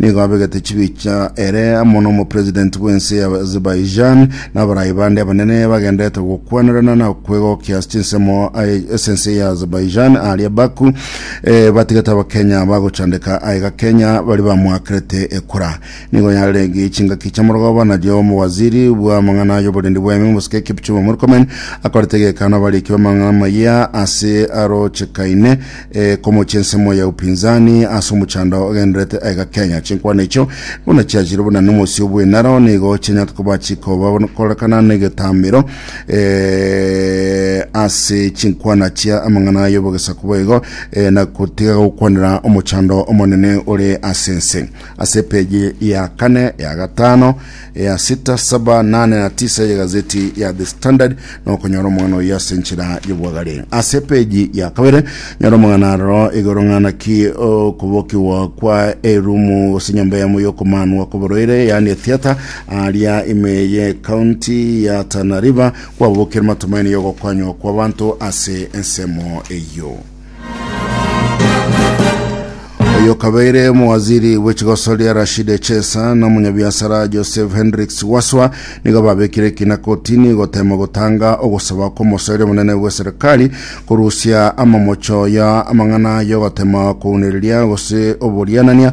Nigo abegete chibicha ere amo n'omopresident bw'ense ya Azerbaijan na abarai bande abanene bagenderete gokwanerana na kwegokia ase chinsemo aye- ase ense ya Azerbaijan aria Baku eh, batigete abakenya bagochandeka aiga Kenya bari bamwakerete ekura nigo yarenge chingaki chiamorogoba nario omowaziri bw'amang'ana y'oborendi bw'eme omosike Kipchumba Murkomen akorete egekano abariiki b'amang'ana maya ase arochekaine E, komochia ensemo ya upinzani ase omochando ogenderete aiga Kenya. Chinkwana echio buna chiachire buna nomosio bw'enaro nigo chianyarete koba chikoba korekana negetamero e, ase chinkwana chia amang'ana y'obogesaku boigo e, na kotiga gokwanera omochando omonene ore ase ense. Ase epeji ya kane, ya gatano, ya sita saba nane na tisa ya gazeti ya The Standard na okonyora omong'ana oyo ase enchera y'obwagare. Ase epeji ya kabere nyora omong'ana aroro igoro ng'ana ki okobokigwa kwa erumu gose nyomba yamo y'okomanwa kw'oborwaire yaani etheatre aria ime ye county ya Tana River kwabokire matumaini y'ogokonywa kw'abanto ase ensemo eyio. Oyokabeire omowaziri bw'echigosoria Rashid Echesa na omonyabiasara Joseph Hendricks Waswa nigo babekire ekina kotini gotema gotanga ogosaba kw'omosoeri omonene bw'eserikali korusia amamocho ya amang'ana y'ogotema kounereria gose oborianania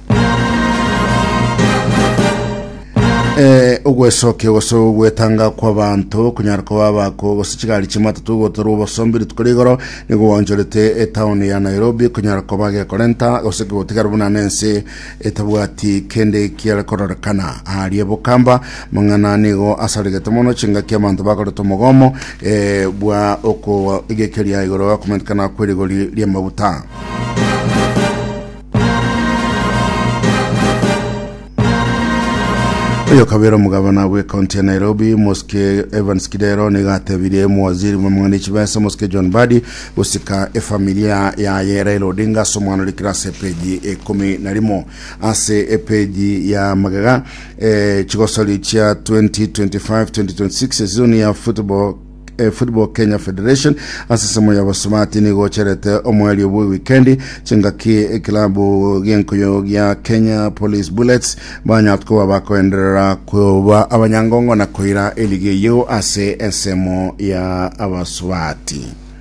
Eh, ogwesokia gose ogwetanga kw'abanto kunyara koba abako gose chigari chi'amatatu gotorwa obosombi rituko rigoro nigo gwanchorete etaoni ya nairobi kunyara koba gekorenta gose gotigara buna nense etabwati kende kiare kororekana aharia bokamba mang'ana nigo asarigete mono chingaki abanto bakoreta omogomo eh, bwa okogekeria igoro komentekana kw'erigori ri'amaguta Oyokabera omogabana bw'ecounty ya Nairobi, Mosike Evans Kidero, nigo atebirie omowaziri bw'amang'ana echibesa, Mosike John Badi, gosika efamilia yaye Raila Odinga ase omwana ore kirasi epeji ekomi na rimo. Ase epeji ya magega, eh, chigosori chia 2025-2026 esizoni ya football eh, Football Kenya Federation ase ensemo ya Basumati nigocherete omwario bwe wikendi chingaki ekilabu gienkoyo gia Kenya Police Bullets banyat koba bakoenderera koba abanyangongo na koira eligi eyio ase ensemo ya Abasubati.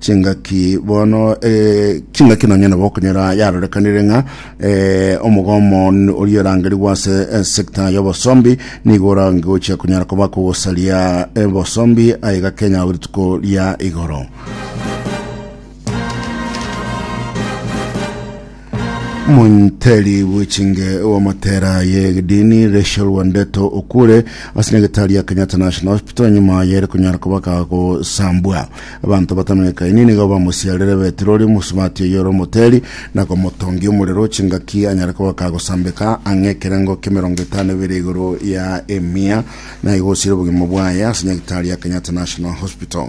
chingaki bono eh, chingaki nonya nabo okonyora yarorekanire ng'a eh, omogomo n- oria orangerigwa ase eh, sector y'obosombi nigo orangochia konyara koba kogosaria eh, bosombi aiga kenya ao rituko ria igoro Omonteri bw'echinge bw'amotera y'egedini Rachel Wandeto okure ase nyagetari ya Kenyatta National Hospital nyuma yere konyara koba gagosambwa. Abanto batamenyekaini nigo bamosiarire betirori mosubati oyo ore omoteri na komotongia omorero chingaki anyare koba gagosambeka ang'e ekerengo k'emerongo etano ebere igoro ya emia na igosiire obogima bwaye ase nyagetari ya Kenyatta National Hospital.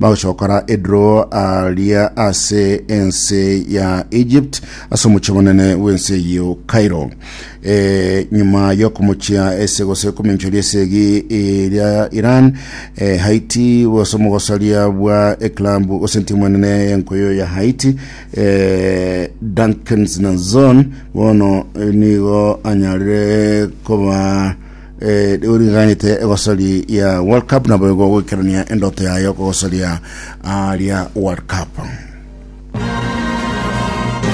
bagochokora edro aria ase ense ya Egypt ase omochie monene bw'ense eyio Cairo. E, nyuma y'okomochia ase gose kominchoria ase egi eria Iran, e, Haiti gose omogosaria bwa eklabu gose entimu enene y'enkoyo ya Haiti e, Duncan Zinazon bono nigo anyarire koba Eh, rigo riganyete egosori ya World Cup nabo igo goikerania endoto yayo kogosoria aria World Cup.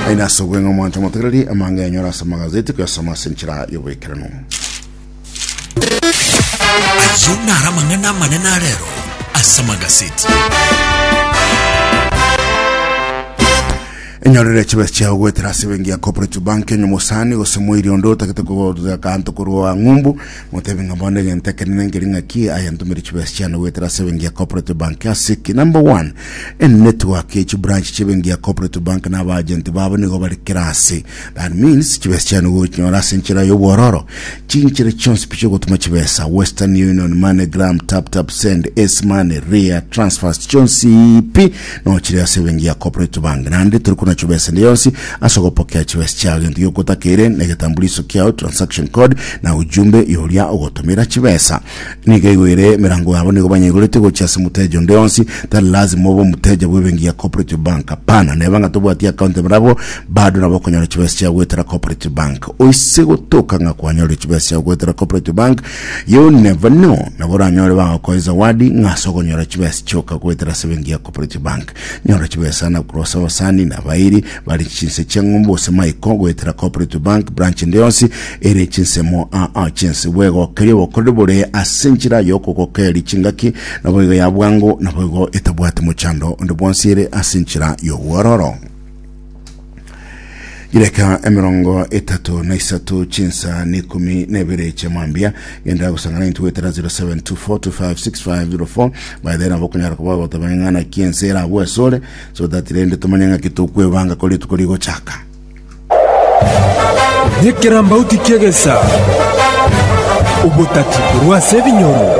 Aina asogwe ng'a omonto motegereri amanga yanyora ase magazeti kuyasoma ase enchera y'oboikeranu. Ayio naro amang'ana amanene arero ase amagazeti. Enyorere chibe chiao goetera ase bengi ya Cooperative Bank enye mosani gose moiri onde otagete kogotera kanto korwa ang'umbu motebi ng'a bono egento ekenene nkeri ng'aki aya ntumire chibe chiane goetera ase bengi ya Cooperative Bank ase ki number one en network echi branch chie bengi ya Cooperative Bank na abagent babo nigo bari kera ase That means chibesa chiane ogochinyora ase enchera y'obwororo chinchera chionsi pi chi'ogotuma chibesa, Western Union, MoneyGram, TapTapSend, Ace Money, Ria, Transfers chionsi pi nochire ase ebenki ya Cooperative Bank. Naende tori kona chibesa ende yonsi ase ogopokea chibesa chiao. Gento gi'ogotakeire na egetambuliso kiao, transaction code, na ujumbe y'oria ogotomera chibesa. Nigo igo ere emerango yabo, nigo banyaigoretie gochia ase omoteja onde onsi. Tari lasima obe omoteja bw'ebenki ya Cooperative Bank, hapana, neba ng'a tobwati account emerabo, bado nabo okonyora chibesa chiao goetera Cooperative Bank. Oise gotoka ng'a kwanyorire chibesa chiao goetera Cooperative Bank, you never know, nabo oranyore bagokoe zawadi ng'a ase okonyora chibesa chioka goetera ase ebenki ya Cooperative Bank. Nyora chibesa na kurosa abasani na abairi bare chinse chi'eng'umbu gose maiko goetera Cooperative Bank branch ende yonsi ere chinsemo aa chinse bwegokeria obokoreri bore ase enchera y'okogokereria chingaki naboigo ya bwango naboigo etabwati mochando onde bwonsi ere ase enchera y'obwororo. Chidakika emerongo etato na isato chinsa na ikumi na ibere chia mambia genda gosangana intu gwetera 0724256504 by then abo okonyara koba goteba ng'ana kiense erabwo asore so that rende tomanye ng'aki tokwebanga kore rituko rigochaka Nyekirambauti kiegesa obotatibu rwase ebinyoro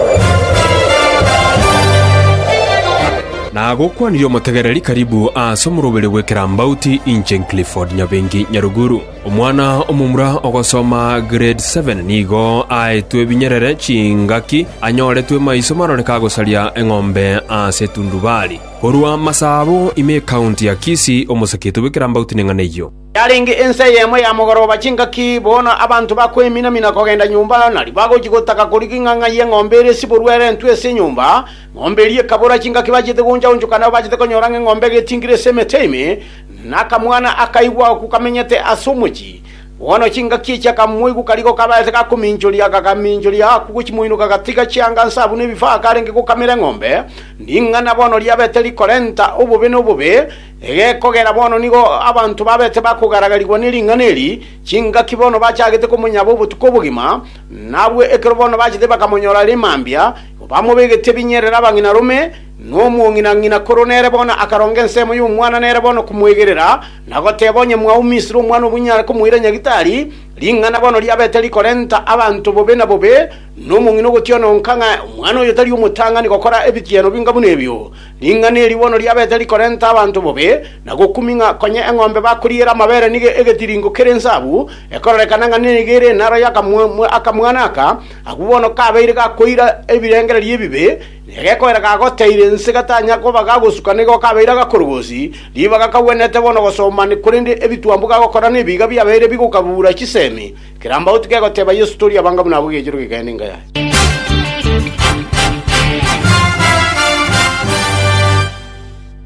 Nagokwanirie omotegereri karibu ase omoroberi bw'ekerambauti inche Clifford Nyabengi Nyaruguru. Omwana omomura ogosoma grade seven nigo aetwe ebinyerere chingaki anyoretwe maiso maroreke agosaria eng'ombe ase etundubari. Korwa Masabo ime ecounty ya Kisii omosakiete bw'ekerambauti neng'ana eyio. Yarenge ensa eyemo ya mogoroba chingaki, bono abanto bakoemina-mina kogenda nyomba, na ribagochi gotaka korigia ing'ang'a y'eng'ombe ere esiborwe erentwe ase enyomba, Ng'ombe eria ekabora chingaki bachete goncha-onchoka nabo bachete konyora ng'a eng'ombe egetingire ase emete ime, na akamwana akaigwa agwo kamenyete ase omochie. Bono chingaki echi akamoigwa karigo kabaete gakominchoria, akagaminchoria agakwa gochimoinoka agatiga chianga nsa buna ebifaa akarenge gokamera eng'ombe. Ring'ana bono riabete rikorenta obobe na obobe, egekogera bono nigo abanto babete bakogaragarigwa ne ring'ana eri, chingaki bono bachagete komonyaba obotuko obogima, na abwo ekero bono bachete bakamonyora are mambia, Bamobegetie binyerera abang'ina rome, na omong'ina ng'ina korwa nere bono akaronga ensemo y'omwana nere bono komoegerera, na goteba, Onye mwao Misiri omwana obunyare komoira nyagitari, ring'ana bono riabete rikorenta abanto bobe na bobe, na omong'ina ogotiona onka ng'a omwana oyo tari omotang'ani gokora ebitigeno binga buna ebio. Ring'ana eri bono riabete rikorenta abanto bobe, na gokumi ng'a konya eng'ombe bakoriera amabere nigo egetiringo kere ensabu, ekororekana ng'a nigo ere enaro y'akamwana aka. Agwo bono kabeire gakoira ebirengererio ebibe, na egekoera gagoteire ense gatanya koba gagosuka nigo kabeire agakorogosi, ribaga kagwenerete bono gosomba ne korende ebitwambu gagokora nebiiga biabeire bigokabuura chisemi, kerambauti kegoteba Yeso tori abanga buna abwo egechero gekende enka yaye.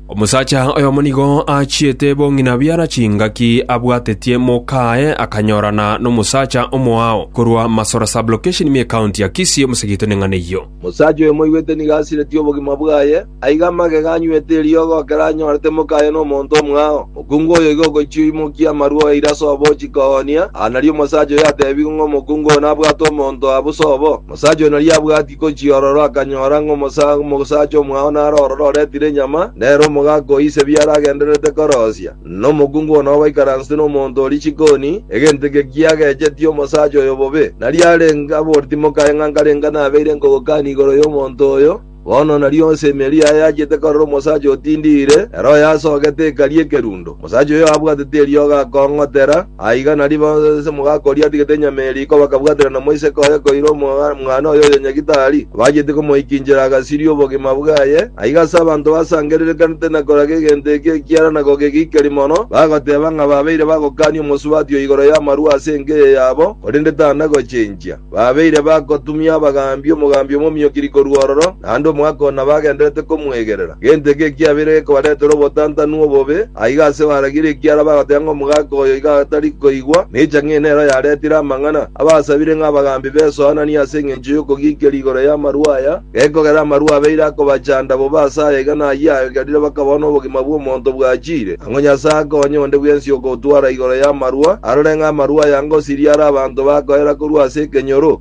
Omosacha oyomo nigo aachiete bong'ina biara chingaki abwatetie mokaaye akanyorana nomosacha omoao korwa Masora Sub-location ime County ya Kisii omosegete neng'ana eyio. Omosacha oyo moigwete nigo asiretie obogima bwaye, aiga amagega anywete eriogo ekero anyorete mokaaye nomonto omoao. Mokungu oyo igo ogochia oimokia amarwa oyaire ase obochiko oo onia. Aa nario omosacha oyo atebigwe ng'a omokungu oo nabwate omonto aa bosa obo. Omosacha oyo nari abwati gochia ororo akanyora ng'a omosacha omwao nare ororo oretire enyama, nere omogaka o ise biara agendererete korosia, na omokungu oo nao baikaransete nomonto o richikoni, egento eke kiagechetie omosacha oyo bobe. Nari arenge aboreti mokaye ng'a nkarenga nabeire nkogokani igoro y'omonto oyo. Bono nario onsi emeeri yaye yachete korora omosacha otindiire, ere oyasogete ekarie ekerundo. Omosacha oyo abwatete eriogo akong'otera, aiga nario bonsi omogaka oria atigete enyama eria iko bakabwatera nomoiseke oye koira omwana oye oyonyagite aria, abacheti komoikinchera agasiria obogima bwaye. Aiga ase abanto basangererekanete na koraga egento eke ekiara na kogegikeri mono, bagoteeba ng'a babeire bagokania omosubati oo igoro y'amarua ase enka eye yabo, korende tana gochenchia. Babeire bagotumia abagaambi, omogaambi omomio-kiri korwa ororo, naende omogaka oo nabagenderete komwegerera. Gento eke ekiabeire gekobaretera obotantanu obobe, aiga ase baragirie ekiara bagoteba ng'a omogaka oyo iga atari koigwa, na echa ng'a enero yaretire amang'ana. Abasabire ng'a abagaambi besoananie ase engencho y'okogiikerwa igoro y'amarwa aya, Gekogera amarua abeire akobachanda bobe ase aya iga nayio aegerire bakabao nobogima bw'omonto bwachiire. Ang'o Nyasae akonya onde bwensi ogotwara igoro y'amarua, arore ng'a amarua aya ngosiria are abanto bakoera korwa ase ekenyoro?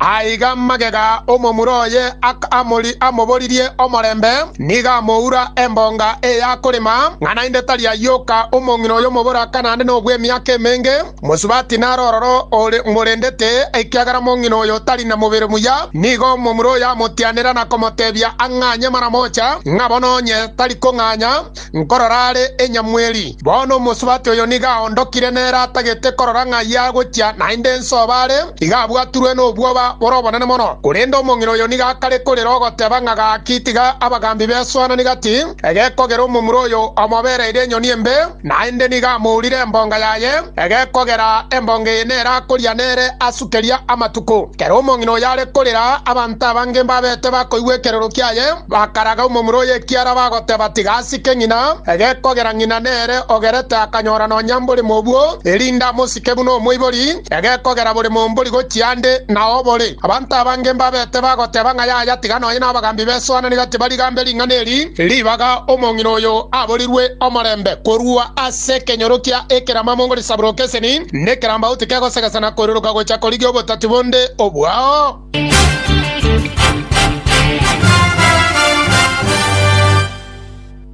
Aiga magega omomura oye akamori amoboririe omorembe, nigo amoura embonga eye akorema, ng'a naende tari ayoka omong'ina oyo omoboraka naende nobw'emiaka emenge, mosubati naro ororo ore morendete, ekiagera omong'ina oyo tari na mobere muya. Nigo omomura oyo amotianera na komotebia ang'anye maramocha, ng'a bono onye tari kong'anya, Nkorora are enyamweri. Bono omosubati oyo nigo aondokire nere atagete korora ng'a ayio agochia, naende ense oba are, iga abwaturwe nobwoba bore obonene mono. Korende omong'ina oyo nigo akare korera ogoteba ng'a gaki tiga abagambi besoanani gati, egekogera omomura oyo omobereire enyoni embe, naende nigo amourire embonga yaye, egekogera embonga eye nere akoria nere asukeria amatuko. Kera omong'ina oyo are korera, abanto abange mbabete bakoigwa ekerero kiaye. Bakaraga omomura o yekiara bagoteba, Tiga asike ng'ina, egekogera ng'ina nere ogerete akanyora nonya mbore mobwo, erinde amosike buna omoibori, egekogera bore mombori gochia ande na obore. Abanto abange mbabete bagoteba ng'a yaya tiga nonya nabagambi besoananire tibarigambe ring'ana eri ribaga omong'ina oyo aborirwe omorembe korwa ase ekenyoro kia ekeramamo ngori saburokeseni nekerambau tikegosegesana koiruruka gocha korigia obotati bonde obwao.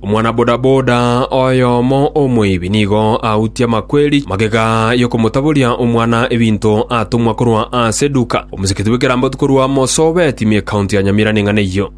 Omwanabodaboda oyomo omoibi nigo autie amakweri magega y'okomotaboria omwana ebinto atomwa korwa ase Duka, omosikiti bw'ekerambato korwa Mosoobe, timi y'Ekaunti ya Nyamira neng'ana eyio.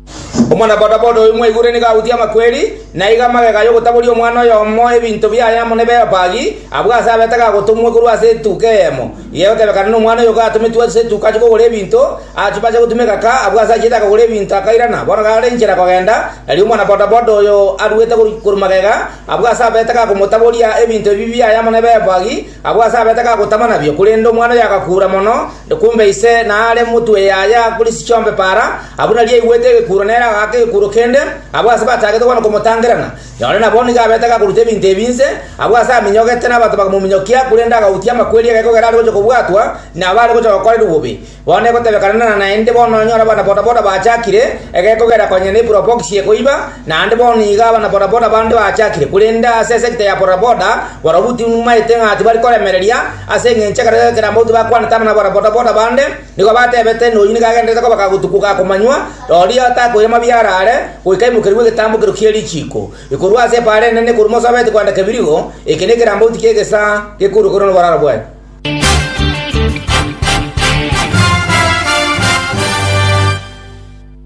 Omwanabodaboda oyo mwaigure nigo agwetie amakweri, na aiga amagega y'ogotaboria omwana oyomo ebinto biaye amo ne Beopagi, abwo ase abete gagotomwa korwa ase etuka eyemo, igegotebekana nomwana oyo gatometwe ase etuka achie kogora ebinto. Achia bacha gotuma egaka, abwo ase achiete akagora ebinto akairana. Bono gare inchera kogenda, erio omwanabodaboda oyo aruete korwa magega, abwo ase abete gakomotaboria ebinto ebi biaye amo ne Beopagi, Agwo ase abete gagotama nabio, korende omwana oyo agakuura mono, kumbe ise naare motwe yaye akure chichombe para. Abwo nario aigwete egekuuro nere agaaka egekuuro kende, abwo ase batagete bono komotangerana. Nonye nabo nigo abete gakoruta ebinto ebi inse, abwo ase aminyogete nabato bakamominyokia, korende agautia amakweri egekogera are gocha kobwatwa nabare gocha gokorerwa bobe. Bono egotebekanana naende bono nonyore abana bodaboda bachakire, egekogera konya ne probox ye koiba, naende bono nigo abana bodaboda bande bachakire, korende ase esecta ya bodaboda barobwo tinumaete ng'a tibari koremereria, ase engencho ekero ekerambe gotyo bakwanete abana ba bodaboda bande, nigo batebete ng'a oyio nigo agendererete kobaka gotuko ga komanywa, rorio atakoira mabia arare, goika aimokerigwe egetambo kerio kie richiiko, ekorwa ase epaara enene korwa mosobeti kwanda kebirigo, eke nekerambe gotyo ki'egesaa gekoruga korwa noboraro bwaye.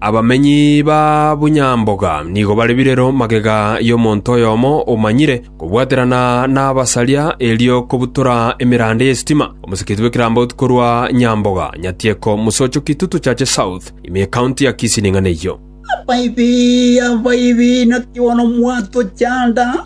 Abamenyi ba Bunyamboga nigo bare birero magega y'omonto oyomo omanyire kobwaterana n'abasaria erio kobutora emeranda y'esitima, omosikiti bw'ekerambaotu korwa Nyamboga, Nyatieko, Musocho, Kitutu, Chache South, ime y'Ecounty ya Kisii ning'ana eyio. Abaibi, abaibi, naki bono mwatochanda!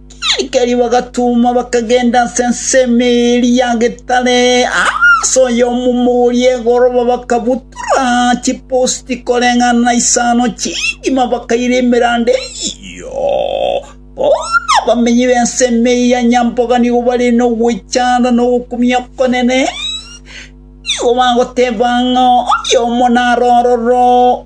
Erio bagatuma, bakagenda ase ensemo eria getare ase oyomomo oria egoroba, bakabutora chiposti koreng'ana na isano chingima, bakaira emeranda eyio. Bono abamenyi b'ensemo eyio ya nyamboga nigo bare nogwechanda na ogokumia okonene, nigo bagoteba ng'a oyomo narororo.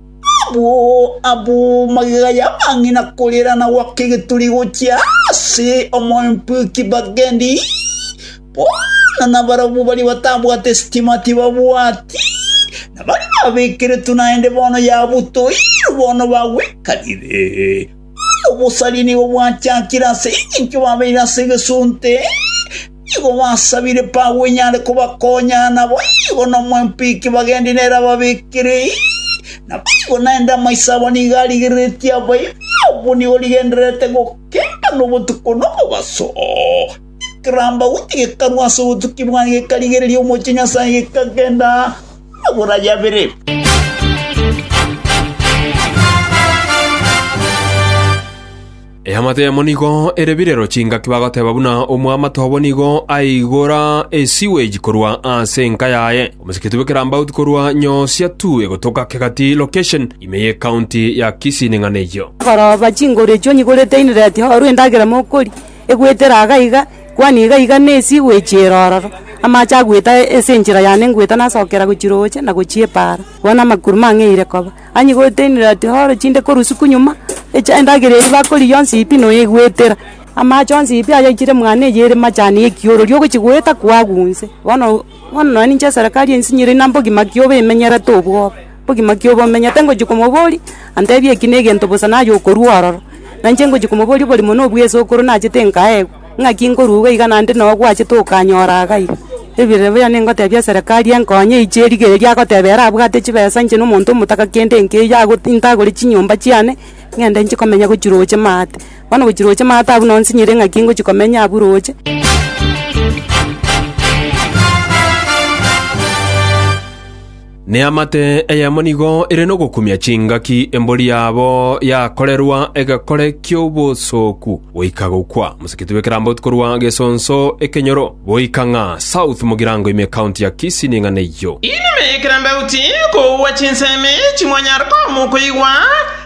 Abwo abwo magega y'amang'ina korera na goaka egeturi gochia ase omoempu ekibagendi, bono nabarabwo baria batabwate sitima tibabwati, na baria babekeretwe naende bono yabutoirwe, bono bagwekanire. Bono obosaria nigo bwachakire ase engencho babeire ase egesunte. Nigo basabire Paulo onye are kobakonya, naboigo nomwempiki bagendi nere ababekere. Naboigo naende amaiso abo nigo arigereretie abaibori abwo nigo rigendererete gokemba nobotuko nomobaso. Ekerambauti gekarwa ase obotuki bwaye gekarigereria omochie Nyasae gekagenda amagoro aye abere. Eamate eyemo nigo ere birero chingaki bagoteba buna omwamate obo nigo aigora esiweji korwa ase enka yaye. Omosikiti bwe Kirambaut korwa Nyosia tu egotoka Kegati location ime ye county ya Kisii neng'ana eyio. Korooba chinguru echio onye igorete inireti orue endagera mokoria egwetera iga iga kwani iga iga ne esewage ere ororo amache agwete ase enchera yane ngwete nasokera gochia roche na gochia epaara bono amakuru mang'eire koba. Anyi goeteinera ati, Horo chinde korusiku nyuma, echa endagera eria bakoria yonsi pi noyegoetera. Amache onsi pi ayaichire mwane eye ere machani y'ekiorori ogochi goeta koagwa onse. Bono, bono nonya ninche eserekari ense niyo erinde mbogima ki obe emenyerete obwoba, mbogima ki obe omenyete ngochia komoboria, antebie eki na egento bosa naye okorua ororo. Nainche ngochia komoboria oborimo na obweso okoro nachete nkaegwa. Ng'aki nkoruga iga naende noo gwachete okanyora agai? Ebirori bono ningotebia eserekari enkonye eiche erigererie agoteba ere abwate chibesa inche na omonto omotaka kende nkeiyo ago- ntagore chinyomba chiane ng'ende nchi komenya gochi roche maate. Bono gochi roche maate abwo noo nsinyire ng'aki ngochi komenya abwo roche. Neamate eyemo nigo ere nogokumia chingaki embori yabo yakorerwa egekore ki'obosooku goika gokwa. Moseketi bw'ekeramboto korwa Gesonso Ekenyoro goika ng'a South Mugirango ime County ya Kisii ning'ana eyio. Inwe ekerambauti, koua chinsemi chimwanyare komokoigwa,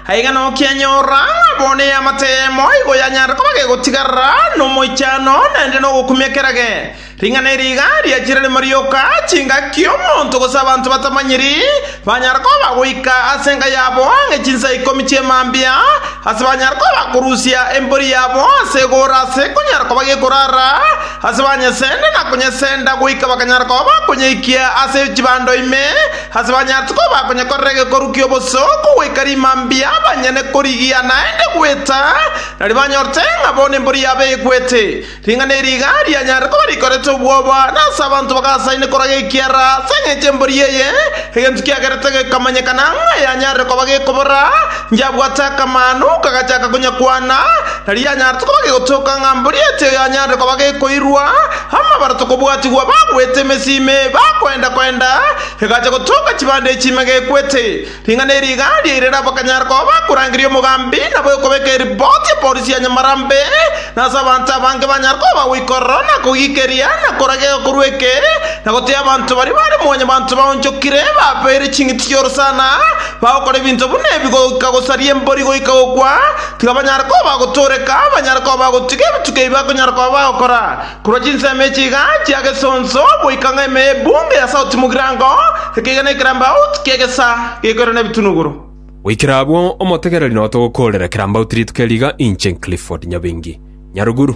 aiga nokianyorora ng'a bo neamate eyemo igo yanyare koba gegotigarera nomoichano naende nogokumia kerage. Ring'ana eri iga riachire rimo rioka, chingaki omonto gose abanto batamanyiri banyare koba goika ase enka yabo ang'e chinsa ikomi chi'emambia, ase banyare koba korusia embori yabo ase egoora ase konyara koba gekorara, ase banyesende na konyesenda goika bakanyara koba bakonyeikia ase chibando ime, ase banyarete koba konyekorera egekoru ki'oboso kogoika rimambia banyene korigia naende gweta, nari banyorete ng'a bono embori yabo egwete. Ring'ana eri iga rianyarire koba rikorete obwoba, na ase abanto bagasaine korwa gekiara ase engencho y'embori eye, egento kiagerete gekamanyekana ng'a yanyarire koba gekobora, Inchebwate akamanu, kagachaka konyakwana, na rianyarete koba gegotoka ng'a mbori eti oyo anyarire koba gekoirwa, amabara tokobwatigwa bagwete emesimi, bakoenda-koenda, egacha gotoka chibande echi ime gekwete. Ring'ana eri igaaria ire nabo bakanyara koba bakorangeria omogambi na bwekobeka eripoti ya polisi ya Nyamarambe, na ase abanto abange banyare koba bagoikorora na kogiikeria na koraga egekorwa eke na goteeba abanto baria bare mwanyabanto baonchokire babeire ching'iti chi'orosana bagokora ebinto buna ebi goika gosaria embori goika gokwa, tiga banyare koba bagotooreka, banyare koba bagotiga ebituko ebi bakonyara koba bagokora. Korwa chinsemo echi iga chia gesonso goika ng'a ime y'ebunge ya sauti mogirango, ekeiga ne ekerambauti ki'egesa gekoirana ebitunuguru. Goikera abwo, omotegereri note ogokoorera ekerambauti rituko eri iga inche Clifford Nyabengi, Nyaruguru.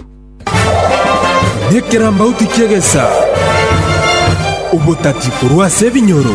Nekerambauti ki'egesa, obotati korwa ase ebinyoro.